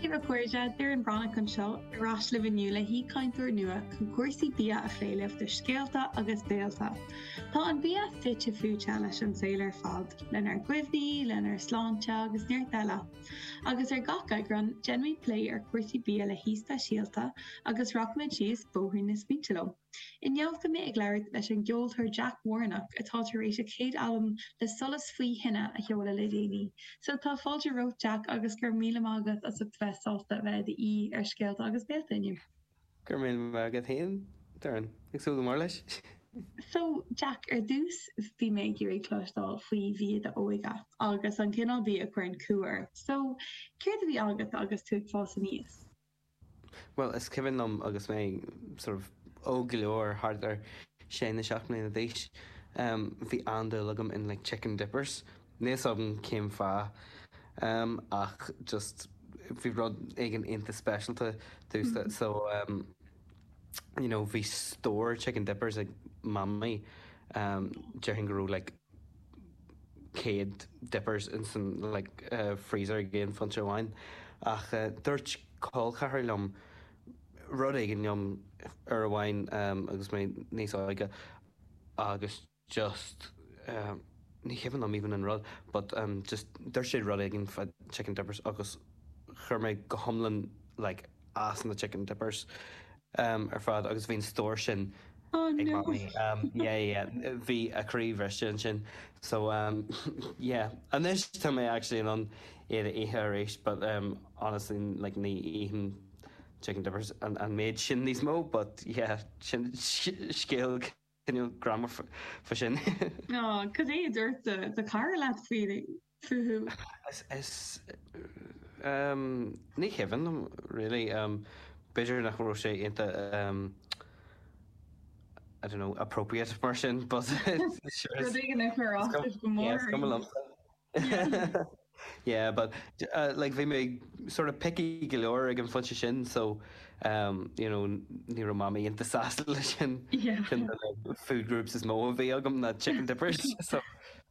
Dia daoibh a chairde, Doireann Breathnach anseo ar ais libh inniu le haoichainteoir nua chun cúrsaí bia a cheiliúradh do Scéalta agus Béilte. Tá an bia fite fuaite leis an saol ar fad, lenár gcuimhní, lenár sláinte agus neart eile. Agus ar gach eagrán, déanfaimid plé ar chúrsaí bia le haoi speisialta agus rachaimid síos bóthar na smaointe leo. Inniu tá mé ag labhairt leis an gceoltóir Jack Warnock atá tar éis a chéad albam Le Solas Faoi Thine a sheoladh le déanaí. So tá fáilte romhat Jack agus go raibh míle maith agat as ucht bheith sásta a bheith i do aoi ar Scéalta agus Béilte inniu. Go raibh míle maith agat féin Doireann, ag súil go mór leis! So Jack, ar dtús bhí mé ag iarraidh cloisteáil faoi bhia d'óige agus an cineál bia a chuireann cumha ort. So céard a bhí agat agus tú ag fás aníos? Bhuel, is cuimhin liom agus mé sort of óg go leor, thart ar sé nó seacht mbliana d'aois, bhí an-dúil agam in like chicken dippers. Níl 'fhios agam cén fáth ach just bhí rud éigin ionta speisialta domhsa so you know bhí stór chicken dippers ag mamaí déarfainn go raibh like 100 dippers insan freezer ag aon phointe amháin ach dúirt col ceathar liom rud éigin dom uair amháin agus mé níos óige agus just ní cuimhin liom even an rud but just dúirt sé rud éigin fá chicken dippers agus chuir sé mé go hiomlán like as na chicken dippers. am ar fad agus bhí an stór sin ag mamaí. Yeah, yeah, bhí a croí bhriste ansin. So, yeah, anois tá mé actually in ann iad a ithe arís but honestly like ní ithim chicken dippers an méid sin níos mó but yeah, sin scéal cineál greannmhar fá sin. Cad é a dúirt do chara leat faoi? fúthu. Ní cuimhin liom really, b'fhéidir nach raibh sé iontach I don't know appropriate mar sin but sure is. Rud éigin a chur as uaibh go mór arís. Yeah, is cuma liomsa. Yeah, but like bhí mé sort of picky go leor ag an phointe sin so you know ní raibh Mamaí iontach sásta leis sin. Yeah. Food groups is mó a bhí agam ná chicken dippers so.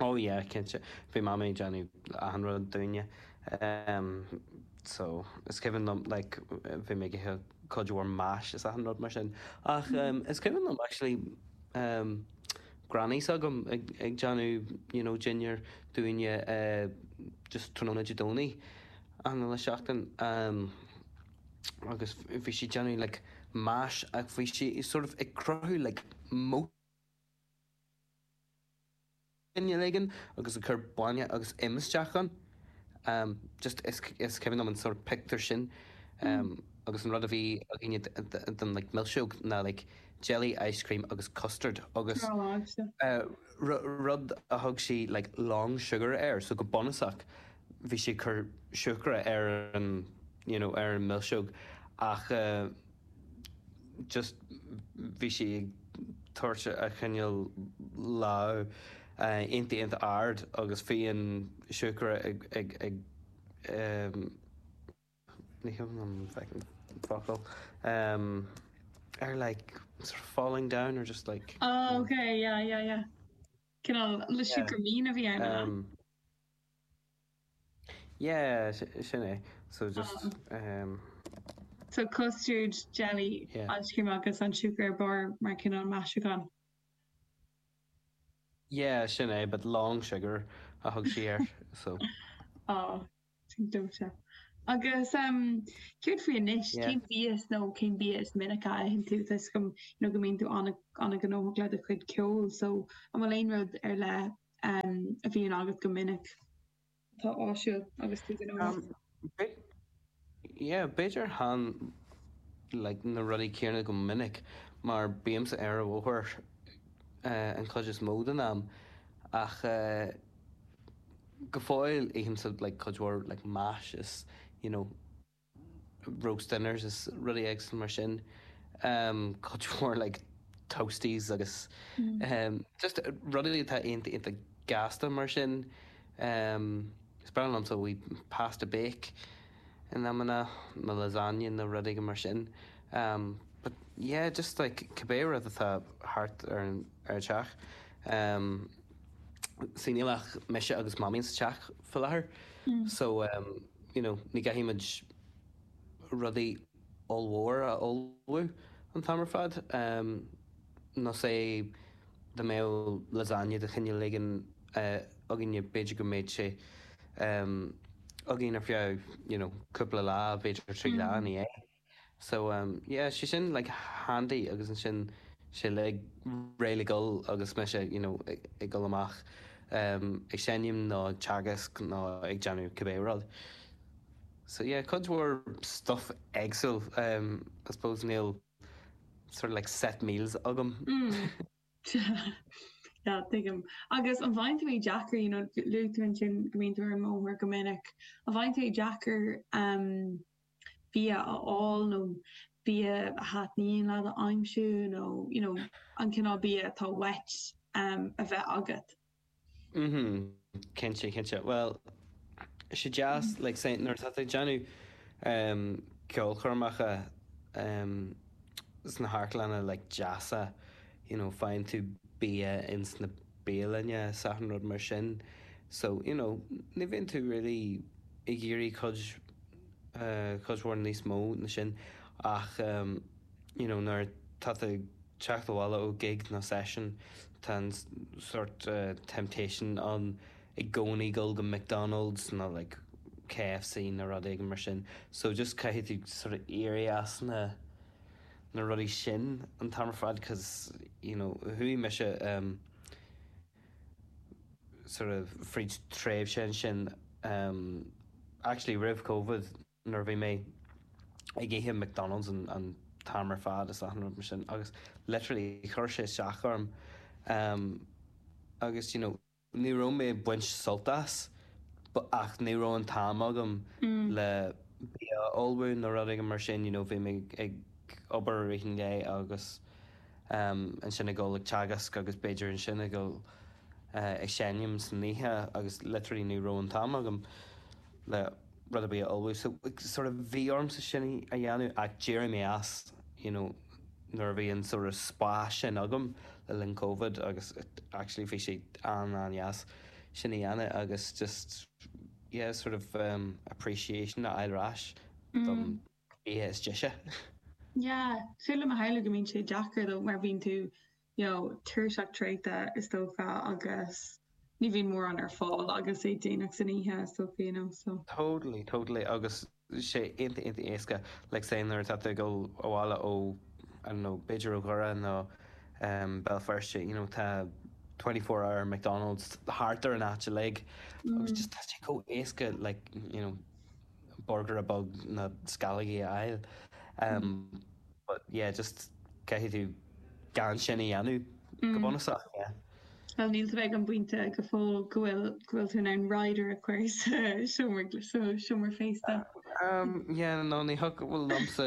Ó yeah cinnte, bhí mamaí ag déanamh achan rud dúinne em so is cuimhin liom like bhí mé ag ithe cuid mhór mash is achan rud mar sin ach em is cuimhin liom actually em granny s'agam ag ag déanamh you know dinnéar dúinne eh just tráthnóna Dé Domhnaigh achan uile seachtain em agus bhí sí ag déanamh like mash ach bhí sí sort of ag cruthú like mo duine éigin agus ag cur bainne agus im isteach ann. Just is cuimhin liom an sort of pictiúr sin agus an rud a bhí againne don like mhilseog ná like jelly, ice cream agus custard agus rud a thug sí like long sugar air so go bunúsach bhí sí ag cur siúcra ar an you know ar an mhilseog ach. just bhí sí ag tabhairt ag coinneáil a lámh iontach iontach ard agus bhí an siúcra ag ag ag ehm ní thuigim an feckin focal ehm ar like sort of falling down or just like oh okay yeah yeah yeah cineál le siúcra mín a bhí ann Yeah, sin é. So just um. So custard, jelly, ice cream agus an siúcra ar barr mar cineál maisiúcháin. Yeah, sin é, but long sugar a thug sí air, so. Oh, sin dóighte. Agus um céard faoi anois? Cén bhia nó cén bia is minice a itheann tú? Tá a fhios agam go mbíonn tú an-ghnóthach le do chuid ceoil, so an bhfuil aon rud ar leith um, a bhíonn agat go minic. Atá áisiúil agus tú gnóthach. Um, be, yeah, b'fhéidir ithim like, na rudaí céanna go minic mar bímse ar an bhóthar uh, an chuid is mó den am ach uh, go fóill ithimse like, cuid mhór like, mash is you know, roast dinners is rudaí éagsúla mar sin um cuid mhór like toasties agus um just rudaí atá iontach iontach gasta mar sin um is breá liomsa wee pasta bake in amanna nó lasagne nó rudaí mar sin um but yeah just like cibé rud atá thart ar an ar an teach um see níl ach mise agus mamaí sa teach faoi láthair so um you know, ní chaithfimid rudaí ollmhóra a ullmhú an t-am ar fad. Nó say dá mbeadh lasagne de chineál éigin againne b'fhéidir go mbeadh sé againn ar feadh, you know, cúpla lá, b'fhéidir trí lá, nach ea? So yeah tá sé sin like handy agus ansin tá sé like réidh le dul agus mise you know ag dul amach ag seinm nó ag teagasc nó ag déanamh cibé rud. So yeah cuid mhór stuff éagsúil I suppose níl sort of like set meals agam. Yeah tuigim. Agus an bhfaigheann tú é deacair you know luaigh tú ansin go mbíonn tú ar an mbóthar go minic, an bhfaigheann tú é deacair bia a fháil nó bia a thaitníonn leat a aimsiú nó you know an cineál bia atá uait a bheith agat. Mhm, cinnte, cinnte. Bhuel, sé deas like say nuair atá tú ag déanamh ceolchoirmeacha sna hamharclanna like deasa, you know faigheann tú bia ins na bialanna is achan rud mar sin so you know ní bhíonn tú really ag iarraidh cuid cuid mhór níos mó na sin ach you know nuair atá tú ag teacht abhaile ó gig nó seisiún tá an sort temptation ann i gcónaí a ghabháil go McDonalds nó like KFC nó rud éigin mar sin so just caithfidh tú sort of éirí as na na rudaí sin an t-am ar fad cause you know chuaigh mise um sort of fríd tréimhse ansin em actually roimh covid nuair a bhí mé ag ithe McDonalds an an t-am ar fad is achan rud mar sin agus literally chuir sé isteach orm em agus you know ní raibh mé ag baint sult as ach ní raibh an t-am agam le bia a ullmhú nó rud éigin mar sin you know bhí mé ag ag obair i rith an lae agus ansin ag dul ag teagasc agus b'fhéidir ansin ag dul ag seinm san oíche agus literally ní raibh an t-am agam le rud ar bith a ullmhú so sort of bhí ormsa sin a dhéanamh ach d'éirigh mé as you know nuair a bhí an sort of spás sin agam le linn Covid agus actually bhí sé an-an-dheas sin a dhéanamh agus just yeah sort of um, appreciation a fháil ar ais don bhia is deise. Yeah sé de mo thaithí go mbíonn sé deacair dóibh mar bíonn tú you know tuirseach traochta is dócha agus ní bhíonn mórán ar fáil agus é déanach san oíche is dócha you know so. Totally totally agus sé ionta ionta éasca like say nuair atá tú ag dul abhaile ó I don't know b'fhéidir ó Dhoire nó um Béal Feirste you know tá twenty four hour McDonald's thart ar an áit uilig agus just tá sé chomh éasca like you know borgaire beag nó sceallógaí a fháil but yeah just caithfidh tú gan sin a dhéanamh go bunúsach yeah. Bhuel níl tú ag an bpointe go fóill go bhfuil go bhfuil tú in ann rider a chur sa seomra sa seomra feistis. Yeah no ní hé go bhfuil liomsa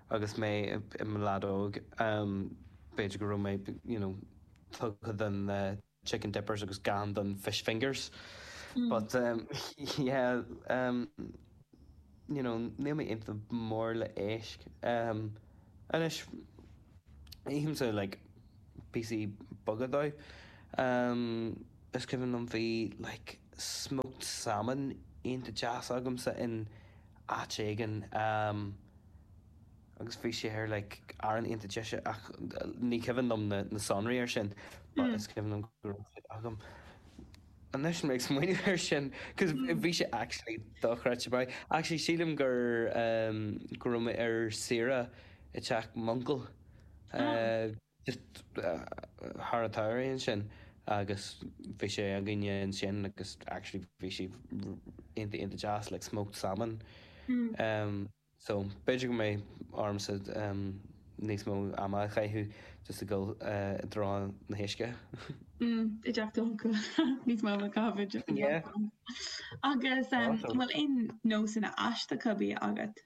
Agus mé i mo leaid óg, b'fhéidir go raibh mé, you know, tugtha don chicken dippers agus chan don fish fingers. But, yeah, you know, níl mé ionta mór le héisc. Anois, ithimse, like, píosaí beaga dóibh. Is cuimhin liom bhí, like, smoked salmon ionta deas agamsa in áit éigin agus bhí sé like arán iontach deas ach ní cuimhin liom na na sonraí ar sin but is cuimhin liom go raibh sé agam anois ag smaoineamh ar sin cos bhí sé actually dochreidte um actually sílim gur um, go raibh mé ar saoire i teach m'uncail uh, Thír an Áir ansin agus bhí sé againne ansin agus actually bhí sé iontach iontach deas like smoked salmon um so b'fhéidir go mbeidh ormsa um níos mó ama a chaitheamh just ag dul uh, i dtreo an uisce mm, i dteach d'uncail níos mó a chaitheamh yeah agus um, bhfuil aon nósanna aisteacha bia agat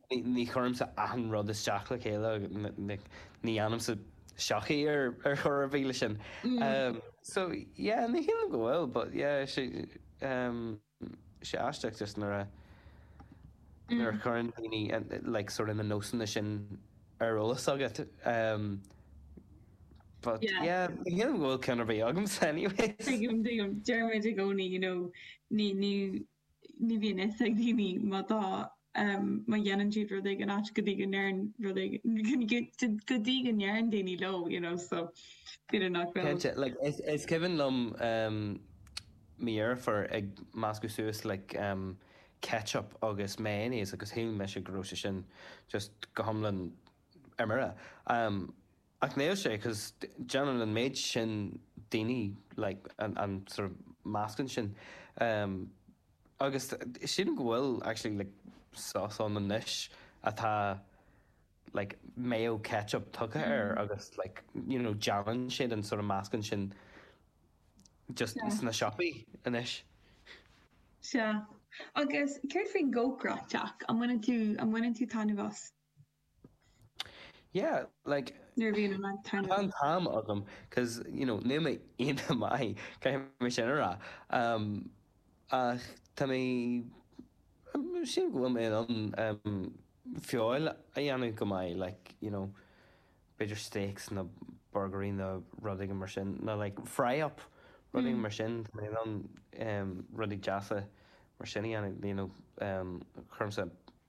Ní chuirimse achan rud isteach le chéile, ní dhéanaimse seachaint ar chor ar bith le sin. So yeah, ní shílim go bhfuil, but yeah, tá sé aisteach just nuair a chuireann daoine like sort of na nósanna sin ar eolas agat. But yeah, ní shílim go bhfuil ceann ar bith agamsa anyways. Tuigim, tuigim. Deirimid i gcónaí, you know, ní, ní. ní bhíonn fhios ag daoine má tá má dhéanann siad rud éigin ait go dtí go ndeireann rud éigin go dtí go ndeireann daoine leo you know so b'fhéidir nach bhfuil Cinnte, like is is cuimhin liom mo dheirfiúr ag meascadh suas like ketchup agus mayonnaise agus shíl mise go raibh sé sin just go hiomlán ar mire. Ach níl sé cos déanann an méid sin daoine like an sort of meascán sin ehm agus sílim go bhfuil actually like sauce ann anois atá like mayo ketchup tugtha air agus like you know déanann siad an sort of meascán sin just Sea. sna siopaí anois. Sea. Agus céard faoin gcócaireacht, Jack? An mbaineann tú an mbaineann tú taitneamh as? Yeah, like, nuair a bhíonn an t-am agam, 'cause, you know, níl mé iontach maith, caithfidh mé sin a rá. Um, ach tá mé, sílim go bhfuil mé in ann, um, feoil a dhéanamh go maith, like, you know, b'fhéidir steaks nó burgairí nó rud éigin mar sin, nó like fry up, rud éigin mar sin, tá mé in ann, um, rudaí deasa mar sin a dhéanamh, you know, um, cuirimse.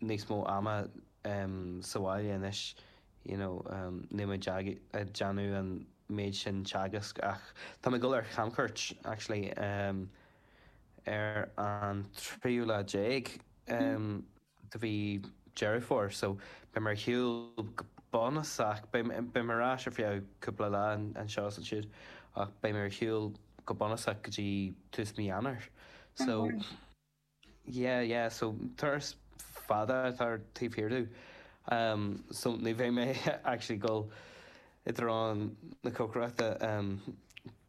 níos mó ama sa bhaile anois you know níl mé ag déanamh an méid sin teagasc ach tá mé ag dul ar chamchuairt actually ar an tríú lá déag de mhí Dheireadh Fómhair so beidh mé ar shiúl go bunúsach beidh mé ar ais ar feadh cúpla lá anseo is ansiúd ach beidh mé ar shiúl go bunúsach go dtí tús mí Eanáir so Yeah yeah so turas fada atá taobh thiar domh um so ní bheidh mé actually ag gabháil i dtreo na cócaireachta um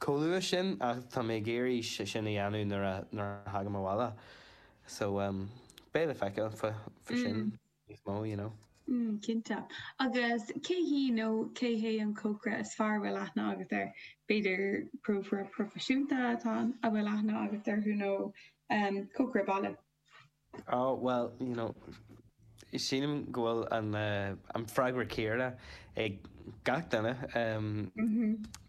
chomh luath sin ach tá mé ag iarraidh é sin a dhéanamh nuair a nuair a thagaim abhaile so um beidh le feiceáil fá fá sin. níos mó, you know. Mm, cinnte. Agus cé hí nó cé hé an cócaire is fearr a bhfuil aithne agat air? B'fhéidir cócaire proifisiúnta atá ann a bhfuil aithne agat orthu nó cócaire baile? Oh, bhuel, you know, sílim go bhfuil an freagra céanna ag gach duine,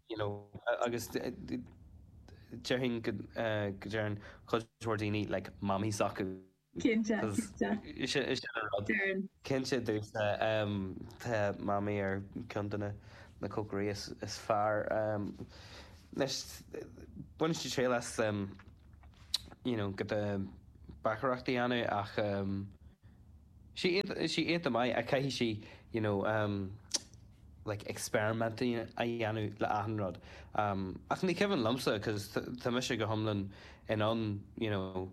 you know, agus déarfainn go deireann cuid mhór daoine like Mamaí s'acu. Cinnte, cinnte. Is é sin an rud. Déarfainn. Cinnte domhsa, tá Mamaí ar cheann de na cócairí is fearr. Anois, baineann sí triail as you know go de báicéireacht a dhéanamh ach tá sí iontach maith ach caithfidh sí you know like experiment a dhéanamh le achan rud. Ach ní cuimhin liomsa cos tá mise go hiomlán in ann you know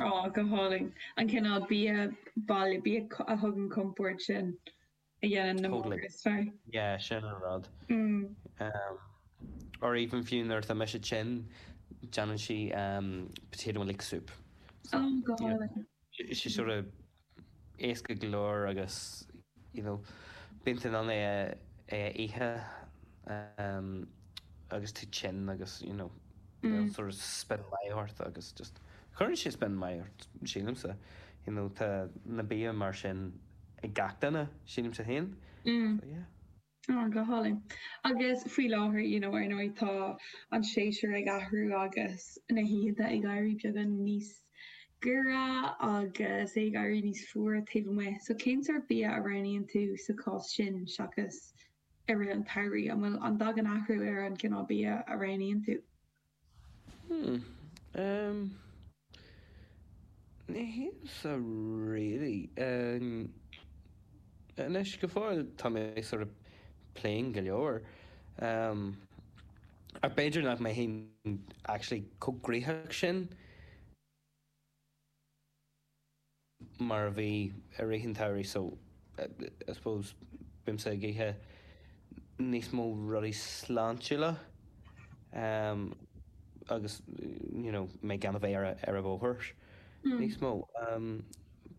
Oh, go hálainn. An cineál bia baile, bia a thugann compord sin a dhéanann na totally. mór is fearr. Yeah, sin an rud. Mm. Um, or even fiú nuair atá mise tinn, déanann sí um, potato and leek soup. So, oh, go hálainn. Tá sé sort of éasca go leor agus you know bíonn tú in ann é a ithe agus tú tinn agus you know níl sort of spion maith ort agus just cuireann sé spion maith ort sílimse. You know tá na bia mar sin ag gach duine sílimse féin. So yeah. Oh go hálainn. Agus faoi láthair you know, ar ndóigh tá an séasúr ag athrú agus na hoícheanta ag éirí beagán níos giorra agus é ag éirí níos fuaire taobh amuigh. So cén sórt bia a roghnaíonn tú sa chás sin seachas i rith an tsamhraidh? An bhfuil an dtagann athrú ar an gcineál bia a roghnaíonn tú? Hmm. Em. Ní shílimse really. Em. Anois, go fóill tá mé sort of plain go leor. Em. Ach b'fhéidir nach mbeinn actually chomh gnóthach sin. mar a bhí i rith an tsamhraidh so I suppose bímse ag ithe níos mó rudaí sláintiúla agus you know mé gan a bheith ar an bhóthar níos mó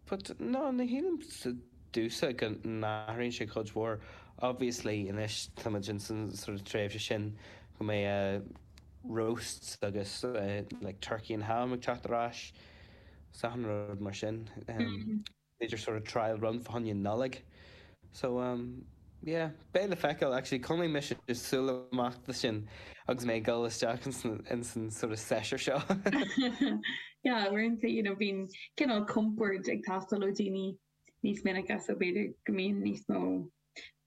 but no ní shílimse domhsa go n-athraíonn sé cuid mhór obviously anois tá muid ins an sort of tréimhse sin go mbeidh roasts agus like turkey and ham ag teacht ar ais Seachain rud mar sin. B'fhéidir sort of trial run fá choinne Nollaig. So umm yeah, beidh le feiceáil. Actually chonaic mise súil amach do sin agus mé ag dul isteach ins an sort of seisiún seo. Yeah, uaireanta you know bíonn cineál compord ag teastáil ó daoine níos minice so b'fhéidir go mbíonn níos mó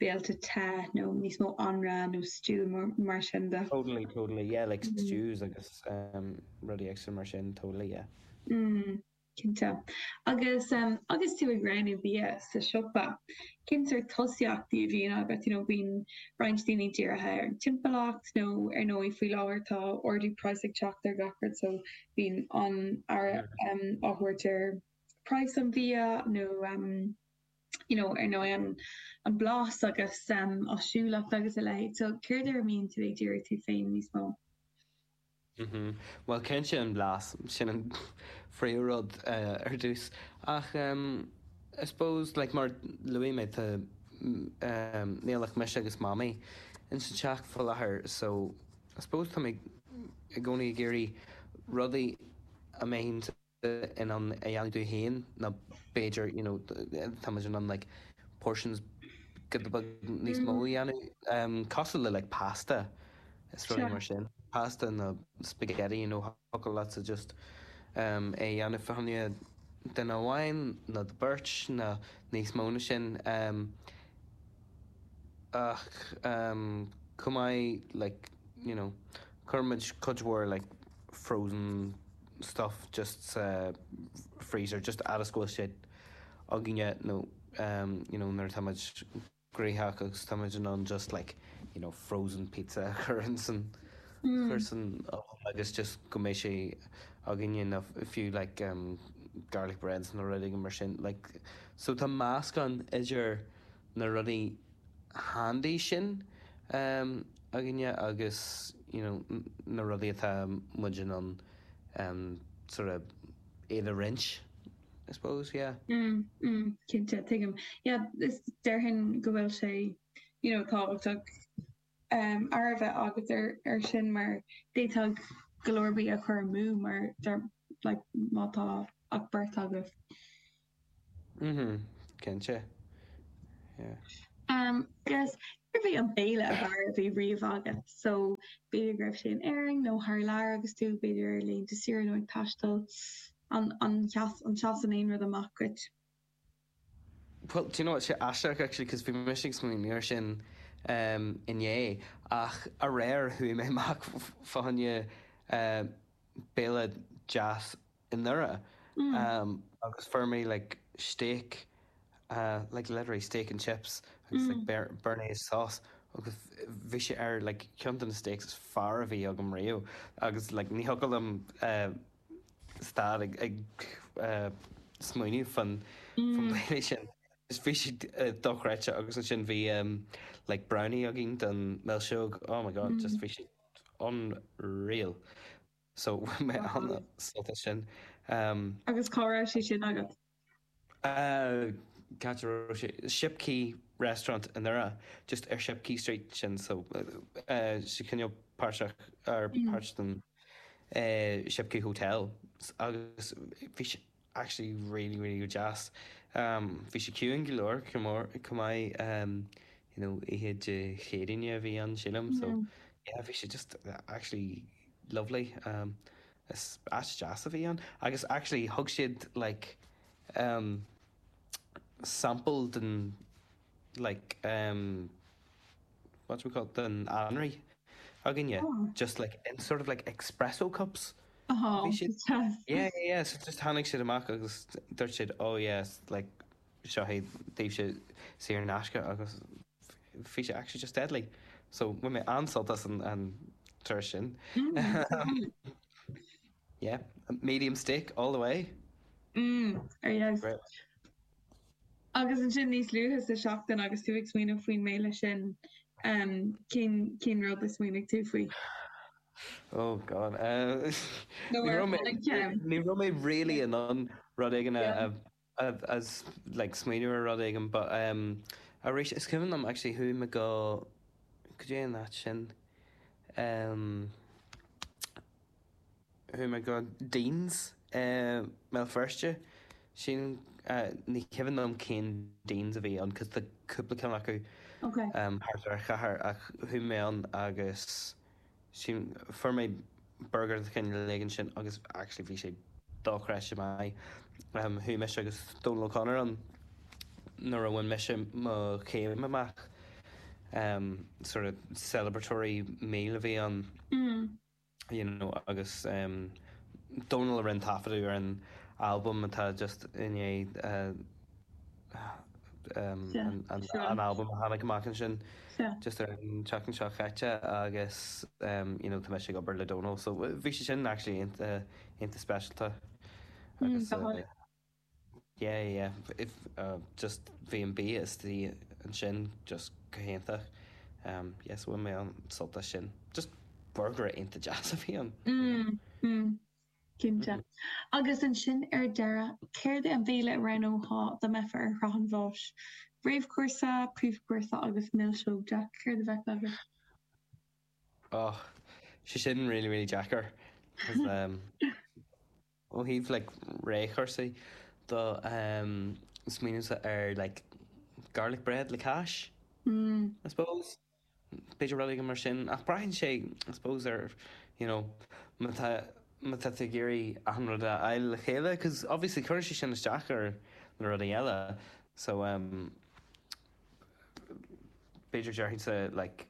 béilte te nó níos mó anraith nó stew nó mar sin de. Totally totally yeah like stews agus rudaí éigin mar sin totally yeah. Mm cinnte. Agus agus tú ag roghnú bia sa siopa cén sort tosaíochtaí a bhíonn agat you know bíonn roinnt daoine dírithe ar an timpeallacht nó ar ndóigh faoi láthair tá ardú praghas ag teacht ar gach rud so bíonn an-aird á thabhairt ar praghas an bhia nó you know ar ndóigh an an blas agus um áisiúlacht agus a leithéid so céard ar a mbíonn tú ag díriú tú féin níos mó? Mhm bhuel cinnte an blas, sin an príomhrud ar dtús ach um I suppose like mar a luaigh mé tá um níl ach mise agus Mamaí ins an teach faoi láthair so I suppose tá mé i gcónaí ag iarraidh rudaí a mbeinn in ann a dhéanamh dúinn féin nó b'fhéidir, you know, tá muid in ann like portions giota beag níos mó a dhéanamh, cosúil le like pasta is rudaí mar sin, pasta nó spaghetti, you know, thiocfadh leatsa just é a dhéanamh fá choinne duine amháin nó beirt nó níos mó ná sin, ach chomh maith like, you know, cuireann muid cuid mhór like frozen. stuff just sa freezer just fhad is go bhfuil sé againne nó you know nuair atá muid gnóthach agus tá muid in ann just like you know frozen pizza a chur ins an chur san oven agus just go mbeidh sé againne nó fiú like garlic breads nó rud éigin mar sin like so tá meascán idir na rudaí handy sin againne agus you know na rudaí atá muid in ann sort of iad a roinnt I suppose, yeah. Mm, mm, cinnte, tuigim. Yeah, is déarfainn go bhfuil sé you know tábhachtach aird a bheith agat ar sin mar d'fhéadfadh go leor bia a chur amú mar like muna bhfuil ach beirt agat. Mhm, cinnte, yeah. Umm, agus, céard a bhí an béile ab fhearr a bhí riamh agat? So, b'fhéidir go raibh sé in Éirinn nó thar lear agus tú, b'fhéidir ar laethanta saoire nó ag taisteal. An, an, an seasann aon rud amach duit? Well, do you know what, tá sé aisteach, actually, because bhí mise ag smaoineamh air sin umm inné, ach aréir chuaigh mé amach fá fá fá fá choinne umm béile deas, anuraidh agus fuair mé like steak like literally steak and chips agus like béarnaise sauce agus bhí sé ar like ceann de na steaks is fearr a bhí agam riamh agus like ní thiocfadh liom stad ag smaoineamh faoin bhéile sin agus bhí sé dochreidte agus ansin bhí like brownie againn don milseog oh my god just bhí sé unreal. So bhain mé an-sult as sin. Agus cá raibh sé sin agat? Cá raibh sé? Shipquay restaurant i nDoire, just ar Shipquay Street sin, so sé cineál páirteach, or páirt den Shipquay Hotel, agus bhí sé. actually really really go deas um bhí sé ciúin go leor chomh maith um you know oíche Dé Céadaoin a bhí ann sílim so yeah yeah bhí sé just actually lovely um is áit deas a bhí ann agus actually thug siad like um sample de like um what do we call them anraí dúinn just like in sort of like espresso cups yeah yeah yeah so just tháinig siad amach agus dúirt siad oh yeah like seo daoibhse saor in aisce agus bhí sé actually just deadly so bhain mé an-sult as an turas sin yeah medium steak all the way. Mmm there you go. Agus ansin níos luaithe sa tseachtain agus tú ag smaoineamh faoin mbéile sin, cén rud a smaoinigh tú faoi? Oh God. Nó ar tháinig ceann? Ní raibh mé really in ann rud éigin a like smaoineamh ar rud éigin but arís is cuimhin liom actually chuaigh mé go, go dtí an áit sin. chuaigh mé go Deanes i mBéal Feirste, sílim, ní cuimhin liom cén Deanes a bhí ann cos tá cúpla ceann acu thart ar an chathair ach chuaigh mé ann agus sílim, fuair mé burgar de chineál éigin ansin agus actually bhí sé dochreidte maith. Chuaigh mise agus Dónal O'Connor ann nuair a bhain mise mo chéim amach, sort of celebratory meal a bhí ann. you know, agus Dónal a rinne taifeadadh ar an albam atá just i ndiaidh an albam a tháinig amach ansin just ar an tseachtain seo chaite agus you know tá mise ag obair le Dónal so bhí sé sin actually iontach speisialta agus Yeah yeah if uh just bhí an bia istigh ansin just go hiontach um yes bhfuil mé ag baint sult as sin just burgaire iontach deas a bhí ann you know. Mm mm cinnte. Agus ansin ar deireadh céard é an béile a roghnófá dá mbeifeá ar shraith an bháis? Réamhchúrsa, príomhchúrsa agus milseog Jack, céard a bheadh agat? Oh sé sin really really deacair cos um Ó thaobh like réamhchúrsaí de ehm smaoinímse ar like garlic bread le cáis I suppose. B'fhéidir rud éigin mar sin ach braitheann sé I suppose ar you know má tá má tá tú ag iarraidh achan rud a fháil le chéile cos obviously cuireann sé sin isteach ar na rudaí eile so ehm b'fhéidir déarfainnse like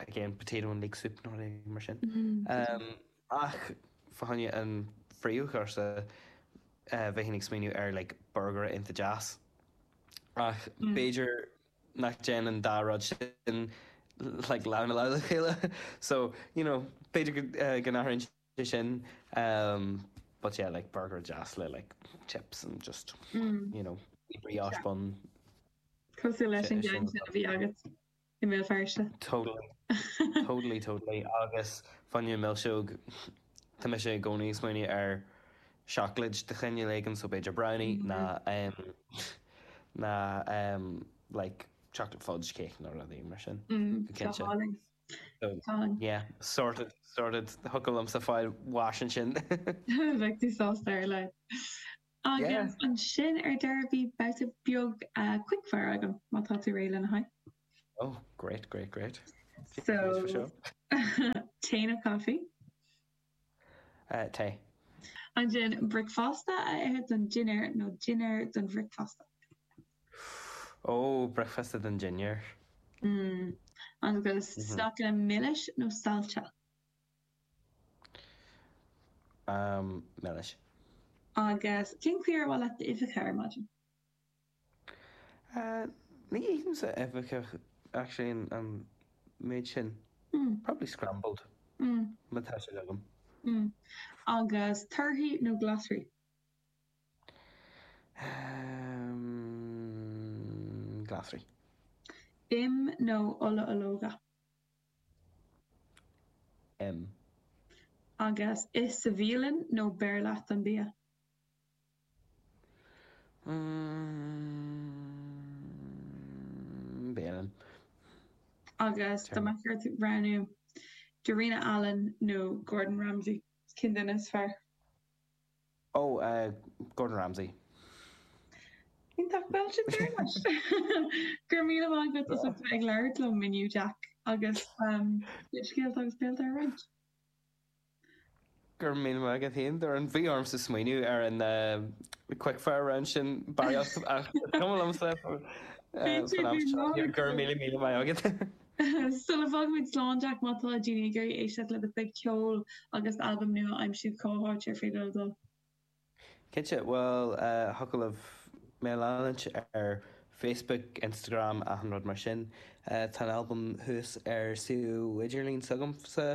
again potato and leek soup nó rud éigin mar sin. Ehm. Ach fá choinne an phríomhchúrsa bheinn ag smaoineamh ar like borgaire iontach deas. Ach b'fhéidir nach dtéann an dá rud sin like lámh i lámh le chéile so you know b'fhéidir go n-athraíonn sé sin umm but yeah like borgaire deas le like chips and just you know brioche bun. Cosúil leis an gceann sin a bhí agat. i mBéal Feirste. Totally. Totally, totally. Agus fá choinne milseog, tá mise i gcónaí ag smaoineamh ar seacláid de chineál éigin, so b'fhéidir brownie nó nó like chocolate fudge cake nó rudaí mar sin. Tá cinnte. Tá ann. Yeah, sorted, sorted. Thiocfadh liomsa fáil bháis ansin. Bheadh tú sásta ar a laghad. Agus ansin ar deireadh beidh babhta beag quick fire agam má tá tú réidh lena haghaidh. Oh great great great. So tae nó coffee? Uh, tae. Ansin bricfeasta a ithe don dinnéar nó dinnéar don bhricfeasta? Ó oh, bricfeasta don dinnéar. Mm. Agus mm -hmm. snaiceanna milis nó saillte? am milis. Agus cén chaoi ar maith leat d'uibheacha ar maidin? Ní ithimse uibheacha actually an méid sin. Probably scrambled má tá siad agam. Agus torthaí nó glasraí? Glasraí. Im nó ola ológa? Im. Agus ithe sa bhialann nó beir leat an bia? M. Bialann. Agus dá mbeadh ort roghnú, Darina Allen nó Gordon Ramsay, cén duine is fearr? Ó, Gordon Ramsay. Iontach, bhuel sin dearmad. Go raibh míle maith agat as ucht a bheith ag labhairt liom inniu Jack agus do scéalta agus béilte a roinnt. Go raibh míle maith agat féin Doireann, bhí ormsa smaoineamh ar an quick fire round sin barraíocht ach is cuma liomsa go raibh míle míle maith agat. Sula bhfág muid slán Jack má tá daoine ag iarraidh éisteacht le do chuid ceoil agus albam nua a aimsiú, cá háit ar féidir leo dul? Cinnte, bhuel, thiocfadh libh mé leanúint ar Facebook, Instagram, achan rud mar sin. Tá an albam thuas ar suíomh idirlín s'agamsa,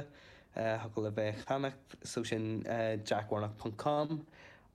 thiocfadh libh é a cheannacht, suíomh sin jackwarnock.com.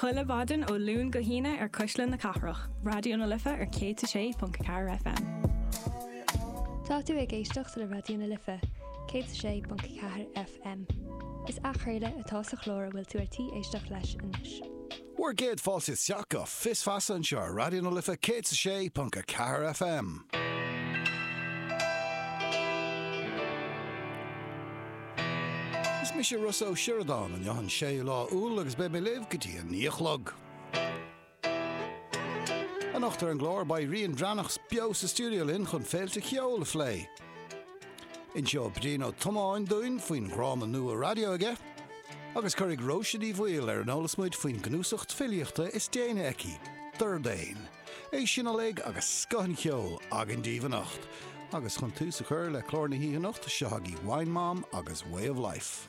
Chuile mhaidin ó Luan go hAoine ar Cuisle na Cathrach, Raidió na Life ar 106.4 FM. Tá tú ag éisteacht le Raidió na Life, 106.4 FM. Is athchraoladh atá sa chlár a bhfuil tú ar tí éisteacht leis anois. Bhur gcéad fáilte isteach go Fios Feasa anseo ar Raidió na Life 106.4 FM. Is mise Ros Ó Sioradáin, an Luan 6 lá Iúil agus beidh mé libh go dtí an naoi a chlog. Anocht ar an gclár beidh Rian Breathnach beo sa stiúideo linn chun féilte cheoil a phlé. Inseoidh Brían Ó Tiomáin dúinn faoin dhráma nua raidió aige agus cuirfidh Róise Ní Bhaoill ar an eolas muid faoin gcnuasacht filíochta is déanaí aici, Dordán. É sin uilig agus scoth an cheoil againn daoibh anocht. Agus chun tús a chur le clár na hoíche anocht, seo agaibh Wine Mom agus Way of Life.